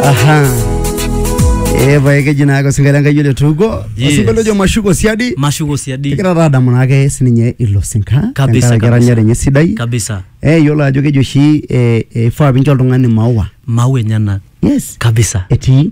Aha. Eh, pae keji naake osinkolio Enkai ole tuuko. Yes. Osinkolio ojo mashuko siadi. mashuko siadi Kigira taa adamu naake sininye ilo sinka. Kabisa, tenkaraki kabisa. eranyare enye sidai. kabisa Eh, yiolo ajo keji oshi eh, eh, ifaa pincho oltung'ani maua. mau enyenak Yes. kabisa Etii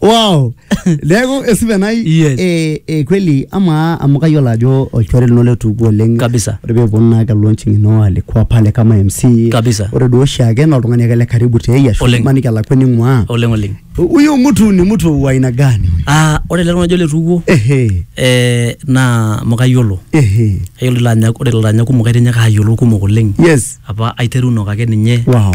wow neeku esipa nai Yes. eh, eh, kweli amaa amu kayiolo ajo olchore lino letuuku oleng Kabisa. ore peeponu naa kelonching ino alikuwa pale kama mc Kabisa. ore duo oshiake naa oltung'ani ake le karibu tei ashu Oleng. maniki alakua ning'ua oleng oleng huyo mtu ni mtu wa aina gani huyo? ah ore ele tung'ani ojo letuukuo ehe eh, naa amu kayiolo ehe kayiolo ilo anya ore ilo anya kumok aitinyaka ayiolou kumok oleng yes apa aiterunok ake ninye wow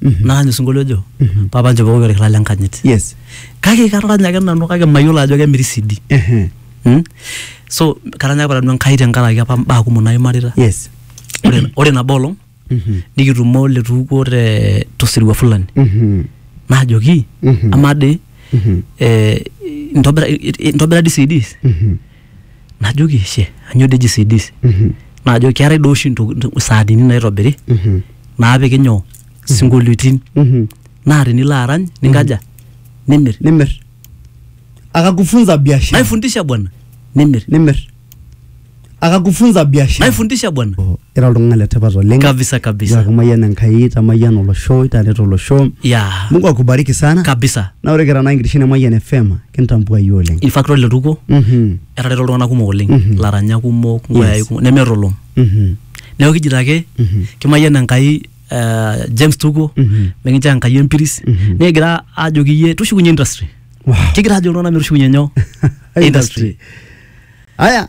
naany osinkolio ojo papa nchopokoki orkila le nkanyit yes kake karanya ake nanu kake mayiolo ajo kemiri CD Ehe. Mm? so karanya apa nanu enkai tenkaraki apa mbaa kumok naimarita yes ore, ore nabo olong Mhm. nikitumo letuukuo te tosirua fulani Mhm. najoki Mhm. amaa dii Mhm. eh, intobira i- i- intobira dii CDs Mhm. najoki she anyoo dei eji CDs naajo keetae doi oshi ntoki- saadini naitobiri naapiki nyoo sinkolioitin naa tinilo arany ninkaja nimir nimir akakufunza biashara naifundisha bwana nimir nimir akakufunza biashara naifundisha bwana ira oltung'ani letipat oleng kabisa kabisa Yaki mayian enkai tamayian olosho itareto olosho ya mungu akubariki sana kabisa na ore kira naa enkitesheni e mayian fm kintambuayu oleng in fact ore ele tukuo Mhm, etareto iltung'anak kumok oleng Mhm. laranyak kumok Yes. nkoyai kumok nemeeta olom mhm, neeku kijito ake mhm, kimayian enkai eh, James Tuko mhm. mikinchoo enkai empiris Mhm. nikigira aajoki iyie tushukunye industry Wow. kigira aajo iltung'anak metushukunye nyoo industry aya